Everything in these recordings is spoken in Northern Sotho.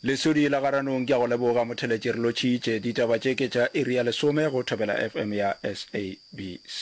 Lesodi la Garanong ke a go leboga motheletši re lotšhitše ditaba tše ke tša iri ya lesome go Thobela FM ya SABC.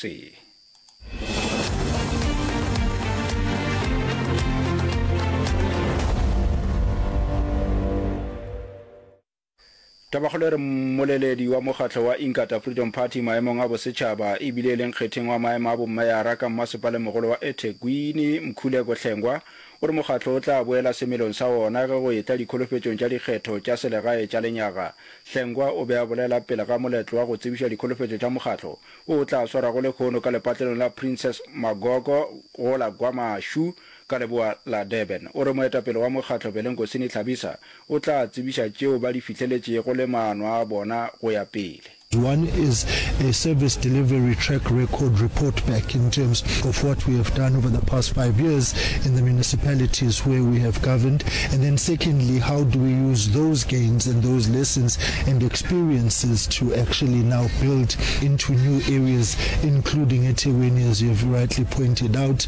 Tabakgolo e re mmoleledi wa mokgatlo wa Inkatha Freedom Party maemong a bosetšhaba e bile e le nkgetheng wa maemo a bommeyara ka mmasepalemmogolo wa Ethekwini, Mkhuleko Hlengwa, o re mokgatlo o tla boela semelong sa wona ge go etla dikholofetšong tša dikgetho tša selegae tša lenyaga. Hlengwa o be a bolela pele ga moletlo wa go tsebiša dikholofetšo tša mokgatlo, o o tla swarwago lehono ka lepatlelong la Princess Magogo go la Gwamashu, ka leboa la Durban. O re moetapele wa mokgatlo Belenkosini Tlhabisa o tla tsebiša tšeo ba di fihleletšego le maano a bona go ya pele. One is a service delivery track record report back in terms of what we have done over the past five years in the municipalities where we have governed and then secondly how do we use those gains and those lessons and experiences to actually now build into new areas including eThekwini as you have rightly pointed out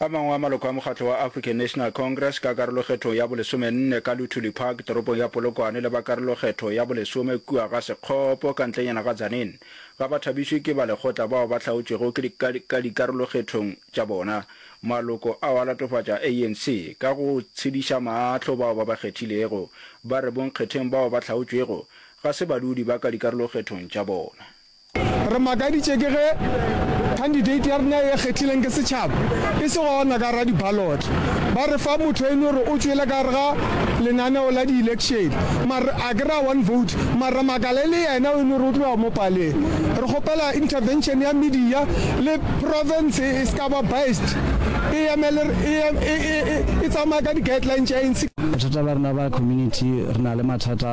A mangwe a maloko a mokgatlo wa African National Congress ka karolokgethong ya bolesomenne ka Luthuli Park toropong ya Polokwane le ba karolokgetho ya bolesome kua ga Sekgopo ka ntlenyana ga Tzaneen ga ba thabišwe ke ba lekgotla bao ba hlaotšwego ka dikarolokgethong tša bona. Maloko ao a latofatša ANC ka go tshediša maahlo bao ba ba kgethilego, ba re bonkgetheng bao ba hlaotšwego ga se badudi ba ka dikarolokgethong tša bona. Re makaditše ke ge khandidate ya rena e kgethileng ke setšhaba e se gona ka gare ga dibaloto. Ba re fa motho e no re o tšwele ka gare ga lenaneo la dielekšene mara a ke re a one vote mara makala e le yena o e no re o tloga mo paleng. Re kgopela intervention ya media le province e se ka ba biased e emele e tsamaye ka di guidelines tša ANC. Bothata ba rena ba community re na le mathata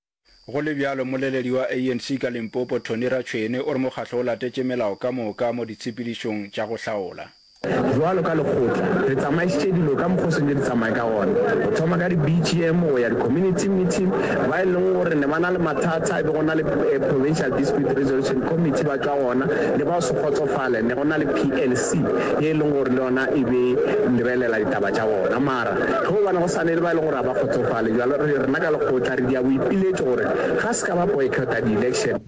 Go le bjalo, mmoleledi wa ANC ka Limpopo, Tony Ratshoene, o re mokgatlo o latetše melao ka moka mo ditshepedišong tša go hlaola. Bjalo ka lekgotla, re tsamaišitše dilo ka mokgwa o sentše di tsamaye ka gona, go thoma ka di-BGM go ya di-community meeting, ba e leng gore ne ba na le mathata e be go na le Provincial Dispute Resolution Committee ba tšwa gona, le ba go se kgotsofale ne go na le PLC ye e leng gore le yona e be lebelela ditaba tša bona. Ge go bona go sa ne le ba e leng gore ga ba kgotsofale, bjalo re rena ka lekgotla re dia boipiletšo gore ga se ka ba boycotta di-election.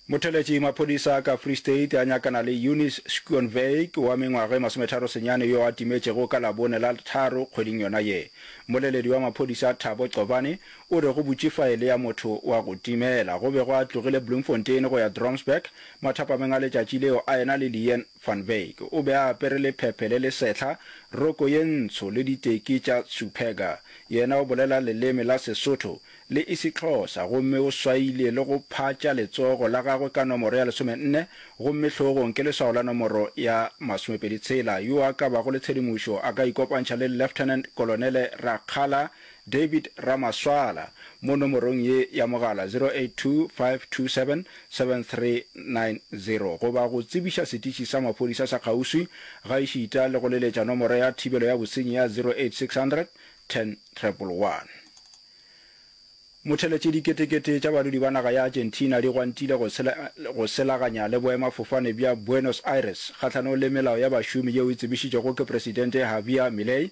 Motheletši maphodisa ka Free State a nyakana le Eunice Schoonwyk wa mengwaga e masometharo senyane yo a timetšego ka Labone la tharo kgweding yona ye. Mmoleledi wa maphodisa Thabo Cobane O re go butše faele ya motho wa go timela. Go bego a tlogile Bloemfontein go ya Dromsburg mathapameng a letšatši leo a ena le Leanne van Wyk. O be a apere lephephe le le sehla, roko ye ntsho le diteki tša Superga. Yena o bolela leleme la Sesotho le Isixhosa gomme o swaile le go phatša letsogo la gagwe ka nomoro ya lesomenne gomme hlogong ke leswao la nomoro ya masomepedi tshela. Yo a ka bago le tshedimošo a ka ikopantšha le Lieutenant Kolonele Rakgala David Ramaswala mo nomorong ye ya mogala 0825277390 goba go tsebiša setiši sa maphodisa sa kgauswi gaešita le go leletša nomoro ya thibelo ya bosenyi ya 08600 10111. Motheletše Diketekete tša badudi ba naga ya Argentina di gwantile go selaganya le boemafofane bja Buenos Aires kgahlanong le melao ya bašomi yeo e tsebišitšwego ke Presidente Javier Milei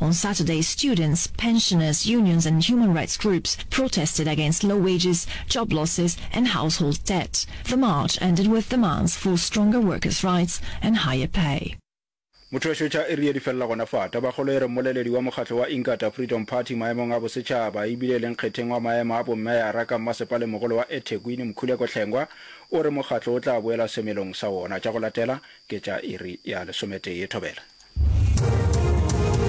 On Saturday, students, pensioners, unions and human rights groups protested against low wages, job losses and household debt. The march ended with demands for stronger workers rights and higher pay. Motho a šotša e rile di felela gona fa. Tabakgolo e re mmoleledi wa mokgatlo wa Inkatha Freedom Party maemong a bosetšhaba e bile le nkgetheng wa maemo a bommeyara ka mmasepaleng-mogolo wa eThekwini Mkhuleko Hlengwa o re mokgatlo o tla boela semelong sa wona. Tša go latela ke tša iri ya lesometee. Thobela.